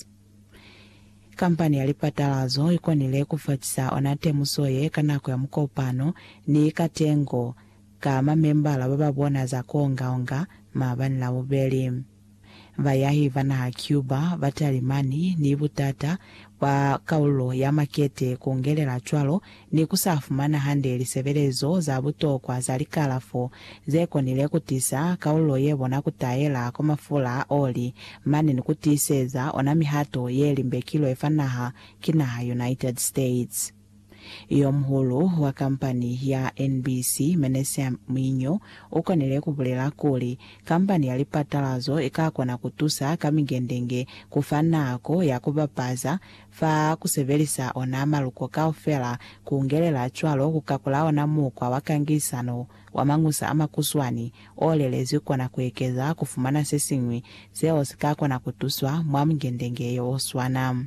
Airlines. Kampani ya lipatala zo i konile ku fatisa ona temuso ye ka nako ya mukopano ni ka tengo ka mamembala ba ba bona za ku onga-onga maabani Labubeli. Bayahi ba naha Cuba, Batalimani ni butata bwa kaululo ya makete ku ngelela cwalo ni ku sa fumana hande lisebelezo za butokwa za likalafo ze konile ku tisa kaululo ye bona ku taela kwa mafula a oli mane ni ku tiiseza ona mihato ye limbekilwe fa naha ki naha United States. Yomuhulu wa kampani ya NBC, Menachem Mwinyo, u konile ku bulela kuli, Kampani ya lipatalazo i ka kona ku tusa ka mingendenge ku fa nako ya ku bapaza Fa ku sebelisa ona maluko kaufela, ku ngelela cwalo ku kakula ona mukwa wa kangisano wa mañusa a makuswani o lelezwi kona ku ekeza ku fumana se siñwi seo si ka kona ku tuswa mwa mungendenge yo o swana.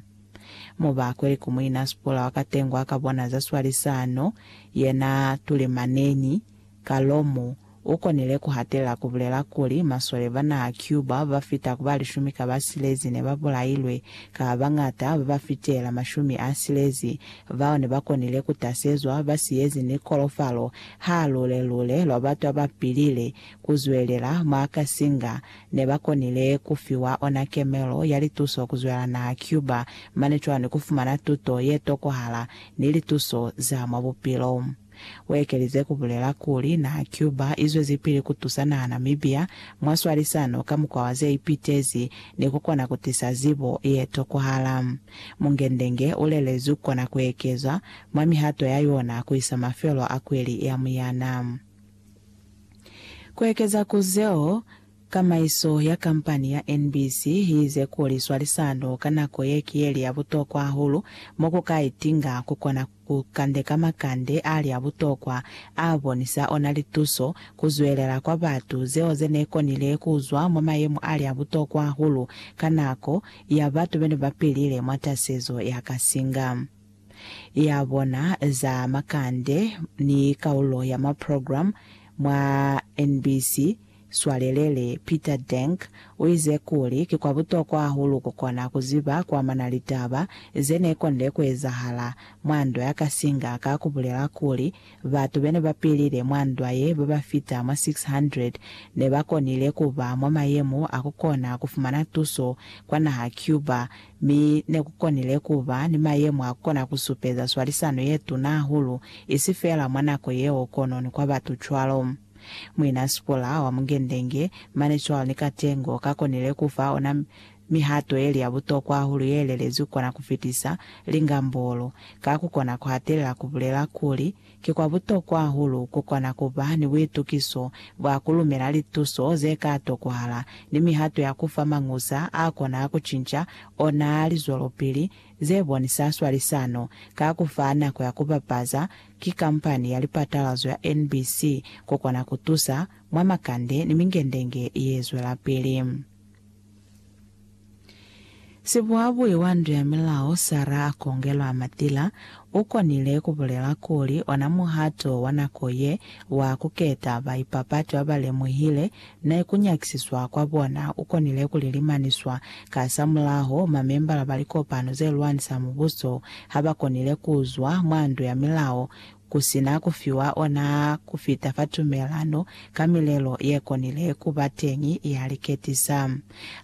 Mo ba kweli ku Muina Spulla wa ka tengwa ka bona za swalisano yena Tulimaneni, Ka loo mu, u konile ku hatelela ku bulela kuli, masole ba naha Cuba ba fita ku ba lishumi ka ba silezi ne ba bulailwe, ka ba bañata ba ba fitela mashumi a silezi bao ne ba konile ku tasezwa ba siyezi ni kolofalo ha lule-lule lwa batu a ba pilile ku zwelela mwa ka singa ne ba konile ku fiwa ona kemelo ya lituso ku zwela naha Cuba mane cwalo ni ku fumana tuto ye tokohala ni lituso za mwa bupilo. Uekelize kubulela kuli, Naha Cuba izwezipili kutusa naha Namibia mwa swalisano ka mukwa wa zeipitezi ni kukona kutisa zibo yetokwahala. Mungendenge ulelezi ukona kuekezwa mwa mihato ya yona kuisa mafelo a kweli ya muyana. Kuekeza ku zeo, kamaiso ya kampani ya NBC iize kuli swalisano ka nako ye ki yeli ya butokwa hahulu mo kuka itinga kukona. Ku kandeka makande ali a butokwa a bonisa ona lituso ku zwelela kwa batu zeo ze ne konile ku zwa mwa mayemo ali a butokwa hahulu ka nako ya batu be ne ba pilile mwa tasezo ya kasinga ya bona za makande ni kaulo ya maprogramu mwa NBC Swalelele Peter Denk uize kuli, Ki kwa butokwa hahulu kukona kuziba kuamana ni litaba zenekonde kuezahala mwa ndwa ya Kasinga ka kubulela kuli, Batu bene bapilile mwa ndwa ye babafita mwa 600 nebakonile kuba mwa mayemo a kukona kufumana tuso kwa naha Cuba, mi nekukonile kuba ni mayemo a kukona kusupeza swalisano yetuna hahulu, isi feela mwa nako yeo kono ni kwa batu cwalo. Muina Sipora wa Mungendenge, mane cwalo ni katengo, ka konile ku fa ona mihato yeli ya butokwa hahulu ye lelezwi kona ku fitisa lingambolo. Ka ku kona ku hatelela ku bulela kuli, Ki kwa butokwa hahulu ku kona ku ba ni buitukiso bwa ku lumela lituso ze ka tokohala ni mihato ya ku fa mañusa a kona ku cinca ona lizwelopili ze bonisa swalisano ka ku fa nako ya ku bapaza Ki kampani ya lipatalazo ya NBC ko kona ku tusa mwa makande ni mingendenge ye zwelapili. Sibuhabui wa ndu ya milao Sarah Akongelwa Matila u konile ku bulela kuli ona muhato wa nako ye wa ku keta baipapati ba ba lemuhile Ne ku nyakisiswa kwa bona u konile ku lilimaniswa. Kasamulaho, mamembala ba likopano ze lwanisa mubuso ha ba konile ku zwa mwa ndu ya milao ku si na ku fiwa ona ku fita fa tumelano ka milelo ye konile ku ba teñi ya liketisa.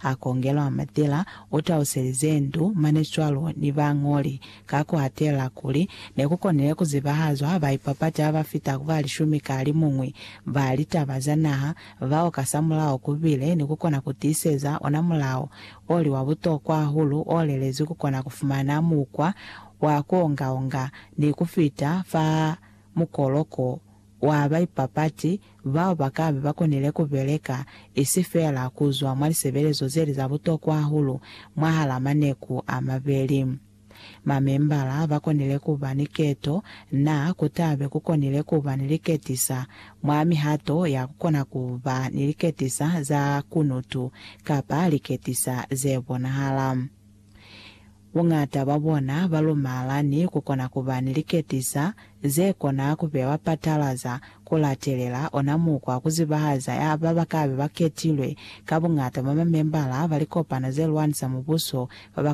A Kongelwa Matila u taluselize ndu mane cwalo ni bañoli Ka ku hatela kuli, ne ku konile ku zibahazwa baipapati ha ba fita ku ba lishumi ka limuñwi ba litaba za naha, bao kasamulaho ku bile ni ku kona ku tiiseza ona mulao o li wa butokwa hahulu o lelezwi ku kona ku fumana mukwa wa ku onga-onga ni ku fita fa mukoloko wa baipapati bao ba ka be ba konile ku beleka isi feela ku zwa mwa lisebelezo ze li za butokwa hahulu mwahal'a maneku a mabeli. Mamembala ba konile ku ba ni keto, na ku ta be ku konile ku ba ni liketisa mwa mihato ya ku kona ku ba ni liketisa za kunutu kapa liketisa ze bonahala. Buñata bwa bona ba lumala ni ku kona ku ba ni liketisa ze kona ku bewa patalaza ku latelela ona mukwa ku zibahaza ya ba ba ka be ba ketilwe, ka buñata mwa mamembala ba likopano ze lwanisa mubuso ba ba